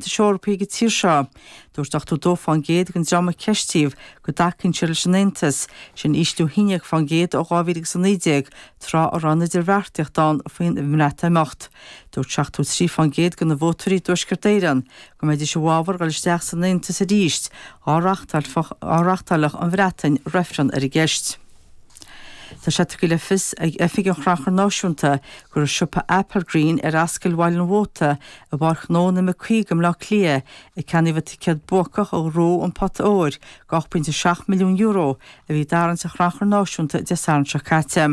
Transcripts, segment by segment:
hEorpaigh an tír seo. Dúirt 82% den dream a ceistíodh go dtacaíonn siad leis an Aontas, sin ísliú 11% ó 2019, tráth a raibh an idirbheartaíocht faoin mBreatimeacht. Dúirt 73% de na vótóirí i dTuaisceart Éireann go mbeidís i bhfabhar dul isteach san Aontas arís, dhá reáchtáilfeadh an Bhreatain reifreann ar an gceist. Tá sé tugtha le fios ag Oifig an Chrannchuir Náisiúnta gur i siopa Applegreen ar Ascaill Bhaile an Mhóta i bPáirc Dhomhnach Cearna i mBleá Cliath a ceannaíodh an ticéad buacach a ghnóthaigh an pota óir de €8.7 milliún a bhí i dtarraingt an Chrannchuir Náisiúnta Dé Sathairn seo caite.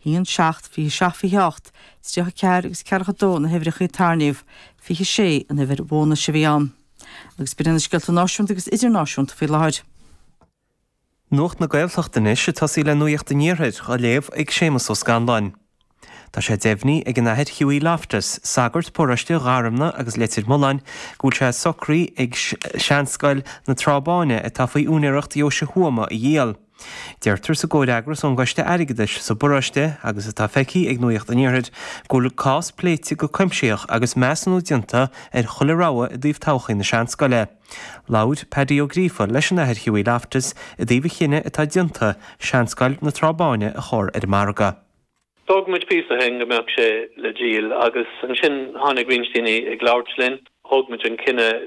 1, 7, 27, 28, 34 agus 42 na huimhreacha a tarraingíodh, 26 an uimhir bhónais a bhí ann. Agus b'in iad na scéalta náisiúnta agus idirnáisiúnta faoi láthair. Nuacht na Gaeltachta anois ag tosaí le Nuacht an Iarthair á léamh ag Séamus Ó Scanláin. Tá sé deimhní ag an Athair Hughie Loftus, sagart paróiste Gharumna agus Leitir Mealláin, go bhfuil sé socraí acu Seanscoil na Trá Báine atá faoi úinéireacht Dheoise Thuama a dhíol. Deirtear sa gcomhfhreagras ón gCoiste Airgeadais sa bparóiste agus atá feicthe ag Nuacht an Iarthair go bhfuil cás pléite go cuimsitheach agus measúnú déanta ar chuile rogha i dtaobh todhchaí na seanscoile. Labhair Paddy Ó Gríofa leis an Athair Hughie Loftus i dtaobh an chinnidh atá déanta seanscoil na Trá Báine a chur ar an margadh. D'fhógair muid píosa ó shin go mbeadh sé le díol agus ansin tháinig roinnt daoine ag labhairt linn, thóg muid an cinneadh,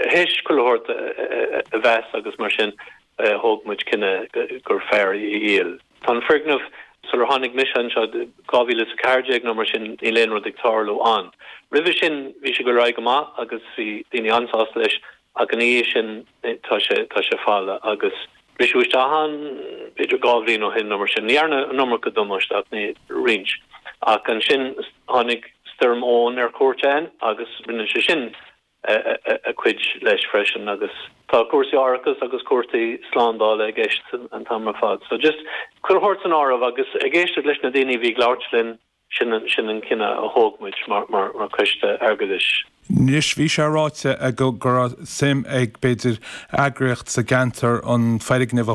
théis chuile shórt a mheas agus mar sin, thóg muid cinneadh gur fearr í a dhíol. Tá an foirgneamh, sular tháinig mise anseo, dhá mhíle is a ceathair déag nó mar sin, níl aon rud ag tarlú ann. Roimhe sin bhí sé go réidh go maith agus bhí daoine an-sásta leis ach ina dhiaidh sin tá sé, tá sé folamh agus briseadh isteach ann b'fhéidir dhá bhliain ó shin nó mar sin. Ní dhearna an iomarca damáiste ach ní, roinnt. Ach ansin tháinig Stoirm Éowyn ar cuairt ann agus rinne sé sin. a cuid leis freisin agus tá cúrsaí árachais agus cúrsaí slándála i gceist an t-am ar fad so just chuile rud a thabhairt san áireamh agus ag éisteacht leis na daoine a bhí ag labhairt linn, sin an, sin an cinneadh a thóg muid mar, mar, mar choiste airgeadais. Anois bhí sé ráite go raibh suim ag b'fhéidir eagraíocht sa gceantar an foirgneamh a